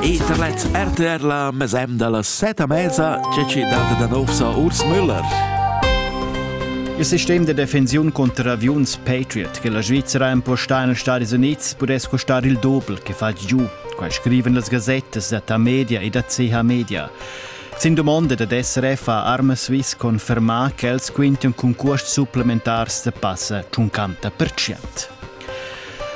Internet RTR la mesem dalla seta mesa che ci data da nov sa Urs Müller. Il sistem de defensiun contro aviuns Patriot che la Svizzera impostà negli Stati Uniti pudess costar il doppel che fa giù, quai scriven las gazettas da Ta Media e da CH Media. Sin domanda da SRF ha Arma Swiss confermà ch'els quintian concurs supplementars da passa 50%.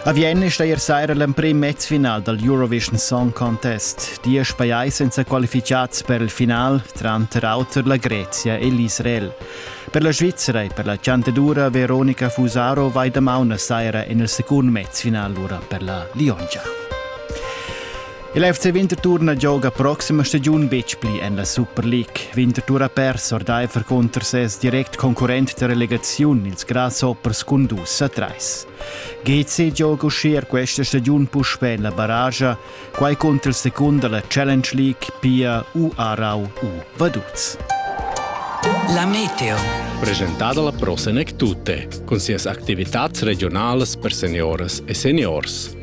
A Vienna è ier saira l'emprim mezfinal dal Eurovision Song Contest. Diesch pajais èn sa qualificads per il final, tranter auter la Grezia e l'Israel. Per la Svizzera e per la Chantadura Veronica Fusaro vai damaun saira en il secund mezfinal lura per la Liongia. Il FC Winterthur na gioga proxima stagiun betg pli en la Super League. Winterthur ha pers ordaifer cunter ses direct concurrent da relegaziun, ils Grasshoppers, cun dus a trais. GC gioga uschia questa stagiun puspè en la barragia, quai cunter il secund da la Challenge League, Pia U Arau U Vaduz. La Meteo. Presentada la prossima tutte, con sias attività regionales per seniores e seniors.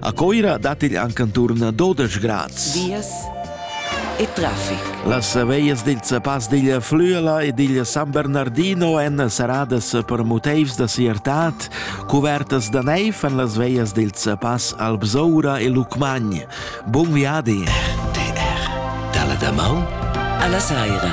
A Coira dat igl anc anturn a 12 grads. Vias e traffic. Las veias dil Zapass digl Flüela e digl San Bernardino èn saradas per motivs da siertad, cuvertas da neiv en las veias dil Zapass Albsoura e Lucmagn. Bun viadi! DR. Dalla damaun alla saira.